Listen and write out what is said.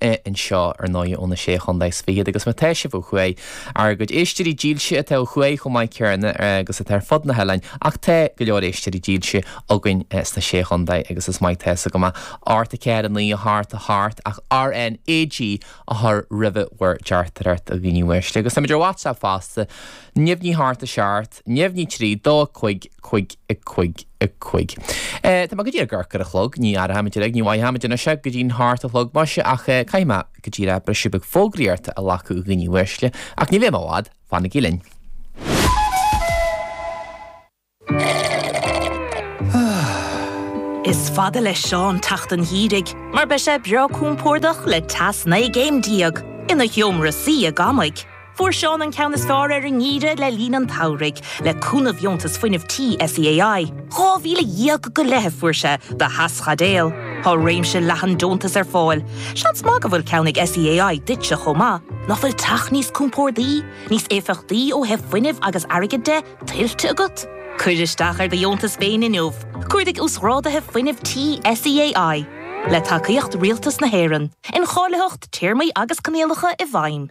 é anseo, ar ndóigh, ó na Sé Chontae is Fichead, agus má tá sibh ó thuaidh, ár gcuid éisteoirí dílse atá ó thuaidh chomh maith céanna agus atá ar fud na hoileáin, ach tá go leor éisteoirí dílse againn sna Sé Chontae agus is maith atá a fhios agam é ocht a ceathair a naoi a hocht a hocht ach RNAG a chur roimhe bhur dteachtaireacht a dhaoine uaisle agus táimid ar WhatsApp fosta neamhní a hocht a seacht neamhní 3, dó 5, cúig, a cúig, a cúig. Eh, tá mé go díreach ag amharc ar an chlog, ní aireoidh muid é, ní mhothóidh muid anois é go dtí'n hocht a chlog maise ach eh, caithfidh mé go díreach briseadh beag fógraíocht a ghlacadh a dhaoine uaisle, ach ní bheidh mé i bhfad, fanaigí linn. Is fada le Seán teacht an gheimhridh mar beidh sé breá compordach le teas naoi gcéim déag ina sheomra suí i gcónaí. Fuair Seán an ceann is fearr ar an ngeimhreadh le linn an tsamhraidh, le cúnamh dheontas fuinnimh Tí SEAI. Dhá mhíle dhéag go leith a fuair sé do theaschaidéal. Tá réimse leathan deontas ar fáil. Seans maith go bhfuil ceann ag SEAI duitse chomh maith. Nach bhfuil teach níos compórdaí, níos éifeachtaí ó thaobh fuinnimh agus airgid de, tuillte agat? Cuir isteach ar do dheontas féin inniu. Cuardaigh Uasghrádaithe Fuinnimh Tí SEAI. Le tacaíocht Rialtas na hÉireann. Incháilitheacht, Téarmaí agus Coinníollacha i bhfeidhm.